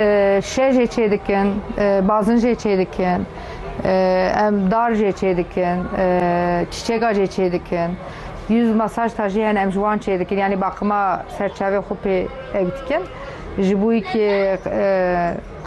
Şe jê çêdikin, bazin jê çêdikin, em dar jê çêdikin, çîçeka jê çêdikin, yüz masaj ta jî hene em ji wan çêdikin yanî baqima ser çavê xwe pê ek dikin ji bo yî ke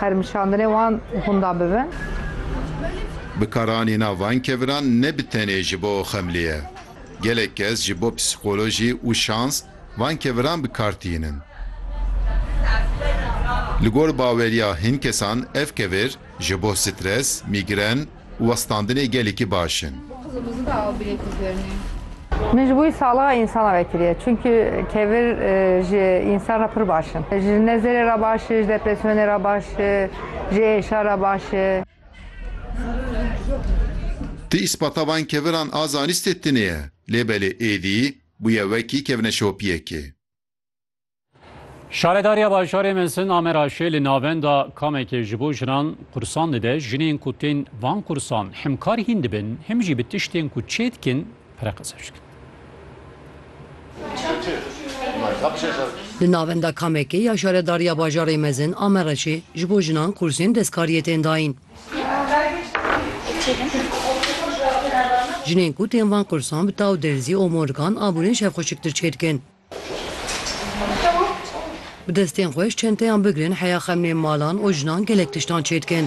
qermişandinê wan hûnda bibin. Bi karanîna van keviran ne bi tenê ji bo xemlê ye. Gelek kes ji bo psîkolojî û şans, Van keviran bi kar tînin. Li gor baweriya hin kesan ev kevir ji bo stres, mîgren û westandinê gelekî baş in. Min ji bo wî saliha însan re vekiriye çunku kevir ji însan re pir baş in. Ji nezerê re baş e, ji depresyonê re baş e, ji êşa re baş e. Ti îspata van keviran a zanistê tune ye lê belê êdî Bûye wekî kevne şopiyekê. Şaredariya Bajarê Mezin a Meraşê li navenda kamekê ji bo jinan qursan dide. Jinên ku tên van qursan himkar hîn dibin, him jî bi tiştên ku çê dikin pireqeze dikin. Li navenda kamekê ya Şaredariya Bajarê Mezin a Meraşê ji bo jinan qursên destkariyê tên dayîn. Jinên ku tên van kursan bi taw derzî, omorgan, abûnên şevxweşiktir çêdikin. Bi destên xwe ji çenteyan bigirin heya xemlên malan û jinan gelek tiştan çêdikin.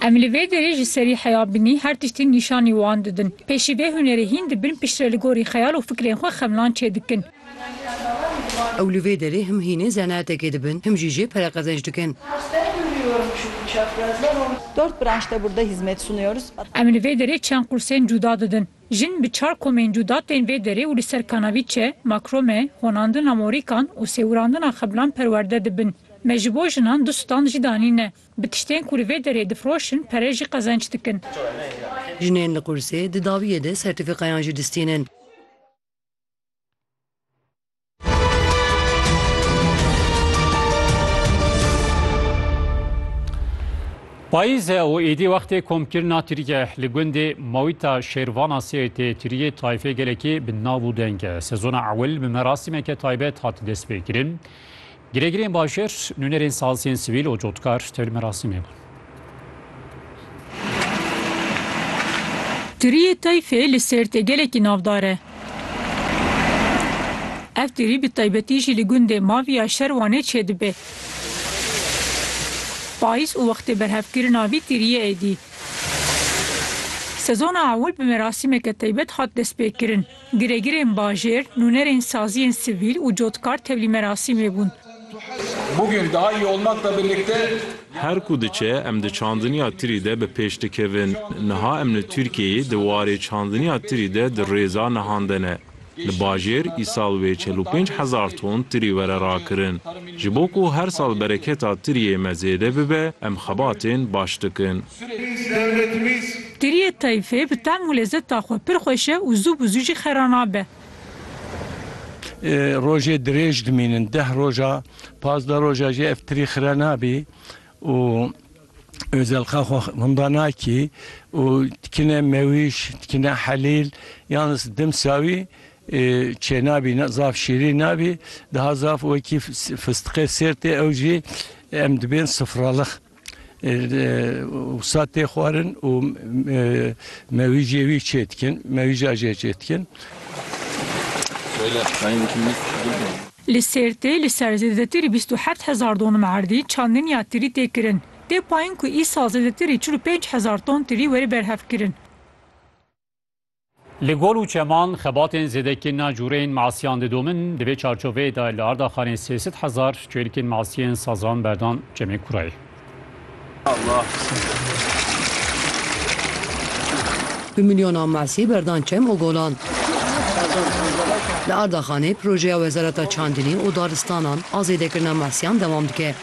Em li vê derê ji serî heya binî her tiştî nîşanî wan didin. Pêşî vê hunerê hîn dibin piştre li gorî xeyal û fikrên xwe xemlan çêdikin. Ew li vê derê him hînê zenaetekê dibin him jî jê pereqezenç dikin. Dört branşta burda hizmet sunuyoruz. Em li vê derê çend qursên cuda didin. Jin bi çar komên cuda tên vê derê û li ser kanavîçe, makrome, honandina morîkan û sêwirandina xebilan perwerde dibin. Me ji bo jinan du stand jî danîne. Bi tiştên ku li vê derê difiroşin pere jî qezenç dikin. Jinên li qursê di daviyê de sertîfîkayan jî distînin. Payîz e û êdî wextê komkirina Tirkiye li gundê Mawîta Şêrvana Sêyê tê Tiriyê tayfê gelekî bi nav û deng e. Sezona ewil bi merasîmeke taybet hat destpêkirin. Girêgirên bajêr, nûnerên saziyên sivîl û cotkar tevlî merasîmê bûn. Tiriyê Tayfê li Sêrtê gelekî navdar e. Ev tirî bi taybetî jî li gundê Mavî ya Şerwanê çêdibe. Payîz û wextê berhevkirina vî tiriyê êdî. Sezona ewil bi merasîmeke taybet hat destpêkirin. Giregirên bajêr, nûnerên saziyên sivîl û cotkar tevlî merasîmê bûn. Her ku diçe em di çandiniya tirî de bi pêş dikevin. Niha em li Tirkiyeyê di warê çandiniya tirî de di rêza nihan de ne. Li bajêr îsal wê çel û pênc hezar ton tirî were rakirin. Ji bo ku her sal bereketa tiriyê me zêde bibe em xebatên baş dikin. Geriyê Tayfê bi tehm û lezeta xwe pir xweş e û zû bi zû jî xera nabe. Rojê dirêj dimînin, deh roja, pazdeh roja jî ev tirî xira nabî û Özelka xwe winda nakî û dikine Mewîş, dikine Helîl yan dimsa wî çênabî, zaf şîrîn nabî, daha zaf wekî fistiqê Sêrtê ew jî em dibên sifralix. Wisa tê xwarin û mewîjê wî çê dikin, mewîja jê çê dikin. Li Sêrtê li ser zêdetir ê bîst û heft hezar donum erdî çandiniya tirî tê kirin. Tê payin ku îsal zêdetir ê çil û pênc hezar ton tirî were berhevkirin. Li gol û çeman xebatên zêdekên na cûreyên masiyan didomin, di vê çarçoveyê de li Ardaxanê sê sed hezar çêlikên masiyên sazan berdan Cemê Kurayê. Bi milyonan masî berdan çem û golan. Li Ardaxanê projeya Wezareta Çandinê û Daristanan a zêdekirina masiyan dewam dike.